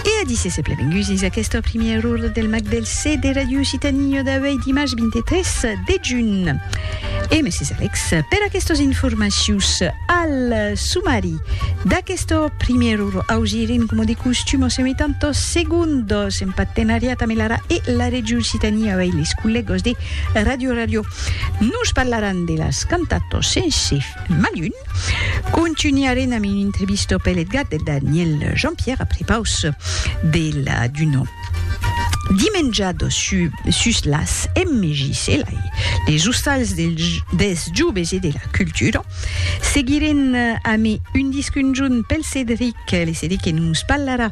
E a disse se plevengusis aquesta primièr ora del Mac del C de Radio Occitanie d'auei dimars 23 de junh. E mèsi Alex per aquestos informacius. Al sumari d'aquesta primièr ora ausirin coma de costum o semitan tos segundos en patenariat amb l'ara e la Regiu Occitanie auei les collègos de Radio Ràdio. Nos parlaran de las cantatos sense malun. Contunharem amb un entrevisto pel Edgar de Daniel Jean-Pierre après paus de la Duno. Dimenjado su, sus las MJs e lai, les ostals del, des joves e de la cultura. Seguirem amé un disc unjun pel Cédric, le Cédric que nos parlarà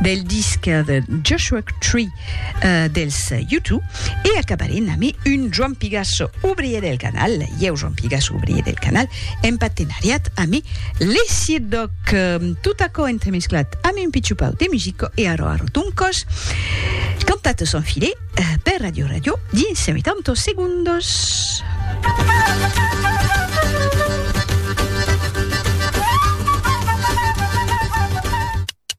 del disc de Joshua Tree dels YouTube e acabaré nami un Joan Pigasso obrier del canal ieu Joan Pigasso obrier del canal en patenariat ami Lesier Doc tot aquò entremesclat ami un pichupau de musico e arò arò d'un còs cantat son filet per Radio Radio dins 80 segundos